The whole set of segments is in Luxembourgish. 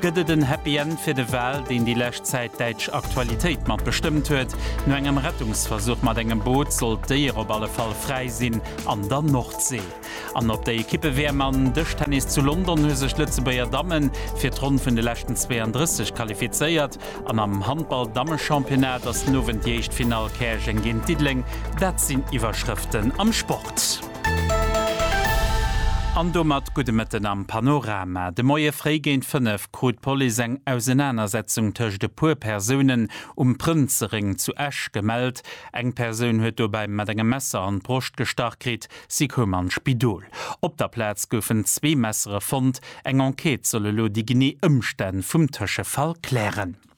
Gëtt et en Happy End fir de Wal, deen déi lescht Zäit däitsch Aktualitéit mat bestëmmt huet? No engem Rettungsversuch mat engem Boot soll d'Déier op alle Fall fräi sinn an der Nordsee. An op der Ekippe-WM an Dëschtennis zu London hu sech d'Lëtzebuerger Damme fir d'Ronn vun de leschten 32 qualifizéiert an am Handball-Damme-Championnat ass den Owend déi éischt Finall Käerjeng géint Diddeleng. Dat sinn d'Iwwerschrëften am Sport. An domat gudde Mëtten am Panorama. De Moie fréi géint 5 krut d'Police eng Ausenanersetzung tëscht e puer Persounen um Prënzeréng zu Esch gemellt. Eng Persoun huet dobäi mat engem Messer an d'Broscht gestach kritt. Si koum an d'Spidol. Op der Plaz goufen zwee Messere fonnt. Eng Enquête soll elo déi genee Ëmstänn vum Tëschefall klären.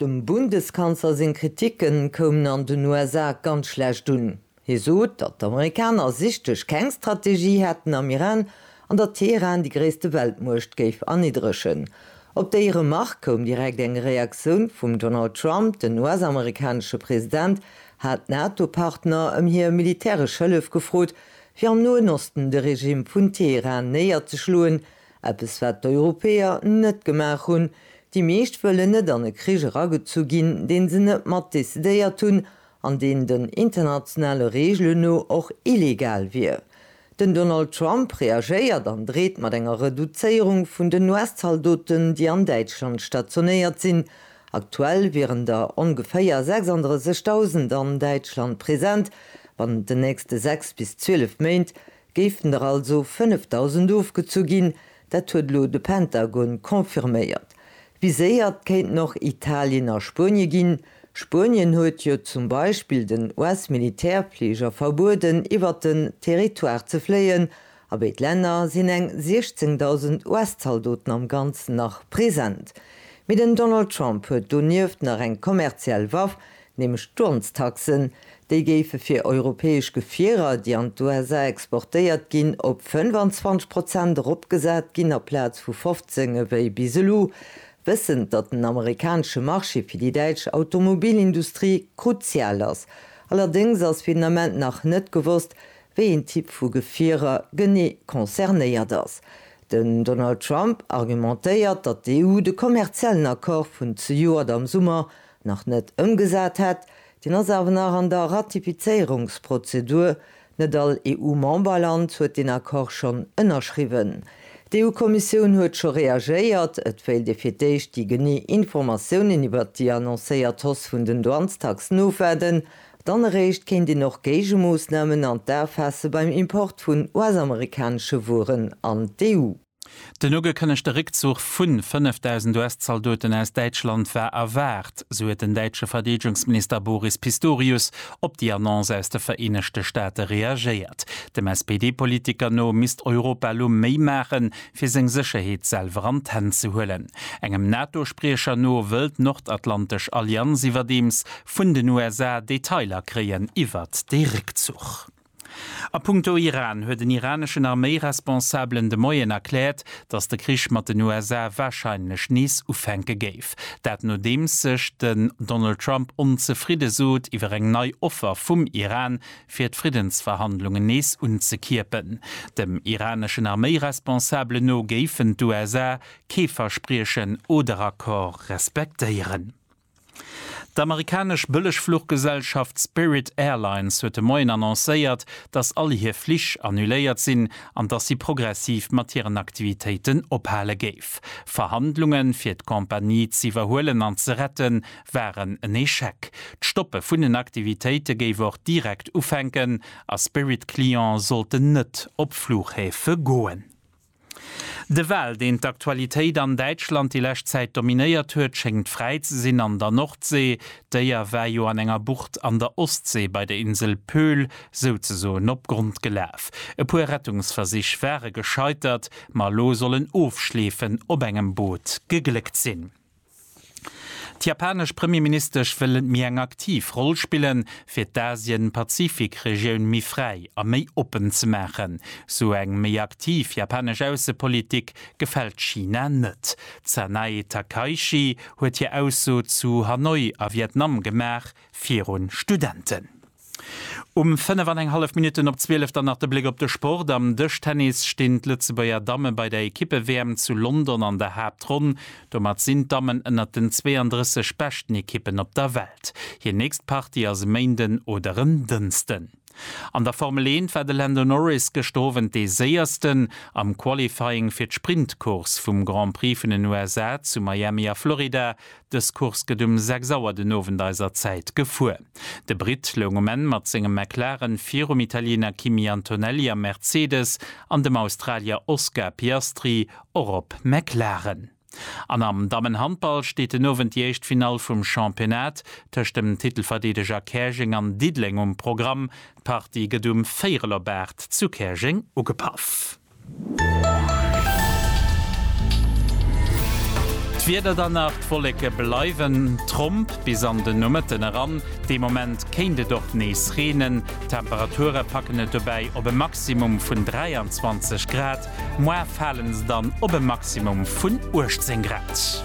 Dem Bundeskanzler seng Kriticke koumen an den USA ganz schlecht un. Hie sot, datt d'Amerikaner sichtlech keng Strategie hätten am Iran an datt Teheran déi gréisste Weltmuecht géif erniddregen. Op déi Remark koum direkt eng Reaktioun vum Donald Trump, den US-amerikanesche President hat d'NATO-Partner ëm hir militäresch Hëllef gefrot, fir am Noen Osten de Regime vun Teheran néierzeschloen, Eppes wat d'Europäer net gemaach hunn. Déi meescht wëllen net an e Krich eragezu ginn, deen se net mat decidéiert hunn an deen den internationale Reegelen no och illegal wier. Den Donald Trump reagéiert an dreet mat enger Reduzéierung vun den US-Zaldoten, déi an Däitschland stationéiert sinn. Aktuell wieren der ongeféier 36.000 an Däitschland present. Bannent den nächste sechs bis zwielef Méint Géifen der also 5.000 ofgezu ginn, dat huet elo de Pentagon confirméiert. Viséiert kéinten och Italien a Spuenie ginn. Spuenien huet jo zum Beispill den US-Militärfliger verbueden, iwwert den Territoire ze fléien. A béid Länner sinn eng 16.000 US-Zaldoten am Ganzen nach present. Mee den Donald Trump huet donieft nach eng kommerziell Waff, nämlech d'Douanestaxen, déi géife fir europäesch Gefierer, déi an d'USA exportéiert ginn, op 25 Prozent eropgesat ginn aplaz vu 15 ewéi bis elo, wëssend, datt den amerikanesche Marché fir déi däitsch Automobilindustrie kruzial ass. Allerdéngs ass fir den Ament nach net gewosst, wéi een Typ vu Gefierer genee concernéiert ass. Den Donald Trump argumentéiert, datt d'EU de kommerziellen Accord vun zejoert am Summer nach net ëmgesat hätt, deen ass awer nach an der Ratifizéierungsprozedur, net all EU-Memberland huet deen Accord schonn ënnerschriwwen. D'EU-Kommissioun huet scho reagéiert, et wéilt ee fir d'éischt déi genee Informatiounen iwwert déi annoncéiert Hausse vun den Douanestaxen ofwaarden, dann eréischt kéint een och Géigemoossnamen an d'A faasse beim Import vun US-amerikanesche Wueren an d'EU. Den ugekënnegte Réckzuch vu 5.000 US-Zaldoten aus Däitschland war erwaart, sou huet den däitsche Verdeedegungsminister Boris Pistorius op déi Annonce aus de Vereenegte Staate reagéiert. Dem SPD-Politiker no misst Europa elo méi maachen, fir seng Sécherheet selwer an d'Hänn ze huelen. Engem NATO-Spriecher no wëll d'nordatlantesch Allianz iwwerdeems vun den USA Detailer kréien iwwert dee Réckzuch. A punkto Iran huet en iraneschen Arméiresponsabelen de Moien erkläert, datt de Krich mat den USA warscheinlech nees ufänke géif. Dat nodeems sech den Donald Trump onzefridde sot iwwer eng nei Offer vum Iran, fir d'Friddensverhandlungen nees unzekierpen. Dem iraneschen Arméiresponsabelen no géifen d'USA kee Verspriechen oder Accord respektéieren. D'amerikanesch Bëllegfluchgesellschaft Spirit Airlines huet de Moien annoncéiert, dass all hir Flich annuléiert sinn an dass si progressiv mat hiren Aktivitéiten ophale géif. Verhandlunge fir d'Compagnie z'iwwerhuelen an ze rette waren en Echec. D'Stoppe vun den Aktivitéite géif och direkt ufänken a Spirit-Cliente sollten net op Fluchhäfe goen. De Wal, deen d'Aktualitéit an Däitschland déi lescht Zäit dominéiert huet, schéngt fräi ze sinn an der Nordsee. D'Déier war jo an enger Bucht an der Ostsee bei der Insel Pöhl souzesoen op Grond gelaf. E puer Rettungsversich ware gescheitert, ma elo soll en Ofschleefen op engem Boot gegléckt sinn. D'japanesch Premierministesch wëll méi eng aktiv Roll spillen, fir d'Asien-Pazifik-Regioun méi fräi a méi oppen ze maachen. Sou eng méi aktiv japanesch Aussepolitik gefält China net. D'Sanae Takaichi huet hir Ausso zu Hanoi a Vietnam gemaach, virun Studenten. Um 5 an eng hallef Minutten op 12 dann nach de Bléck op de Sport, Am Dëschtennis stinn d'Lëtzebuerger Damme bei der Ekippe-WM zu London an der Haaptronn. Domat sinn d'Dammen ënnert den 32 beschten Ekippen op der Welt. Hir nächst Partie ass e Méinden oder en Dënsten. An der Formel Eent war de Lando Norris gëschter Owend dee Séiersten am Qualifying fir d'Sprintcourse vum Grand Prix vun den USA zu Miami a Florida. Dës Course gëtt um 6 Auer den Owend eiser Zäit gefuer. De Britt loung um Enn mat sengem McLaren virum Italiener Kimi Antonelli am Mercedes an dem Australier Oscar Piastri och op McLaren. An am Dammenhandball steet den Owend déi éischt Finall vum Championnat tëscht dem Titelverdeedeger Käerjeng an Diddeleng um Programm. D'Partie gëtt um Véirel op 8 zu Käerjeng ugepaff. D'Wieder dann nach, D'Wolleke bleiwen tromp bis an de Nomëtten eran. Dee Moment kéint et och nees reenen. D'Temperature packen et dobäi op e Maximum vun 23 Grad. Moar fale se dann op e Maximum vun 18 Grad.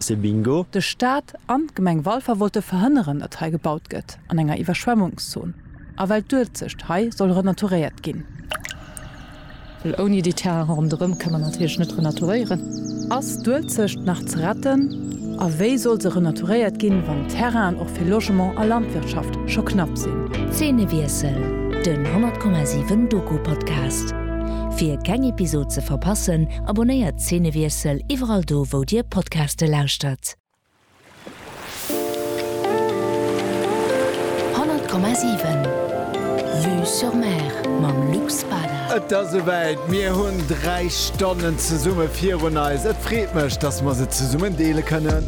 C'est bingo! De Staat an d'Gemeng Walfer wollte verhënneren, datt hei gebaut gëtt an enger Iwwerschwemmungszon a well d'Uelzecht hei soll renaturéiert ginn. Well ouni déi Terrainen ronderëm ka mer natierlech net renaturéieren. Ass d'Uelzecht nach ze retten a wéi soll se renaturéiert ginn, wann d'Terrainen och fir Logement a Landwirtschaft scho knapp sinn? Zeenewiessel, den 100,7 Doku-Podcast. Fir keng Episod ze verpassen, abonnéiert. Zeenewiessel iwwerall do, wou Dir Podcaste lauschtert. Honnert Komma siwen, Vue sur Mer mam Luc Spada. Et ass esouwäit, mir hunn dräi Stonnen zesumme virun eis. Et freet mech, dass mer se zesummen deele kënnen.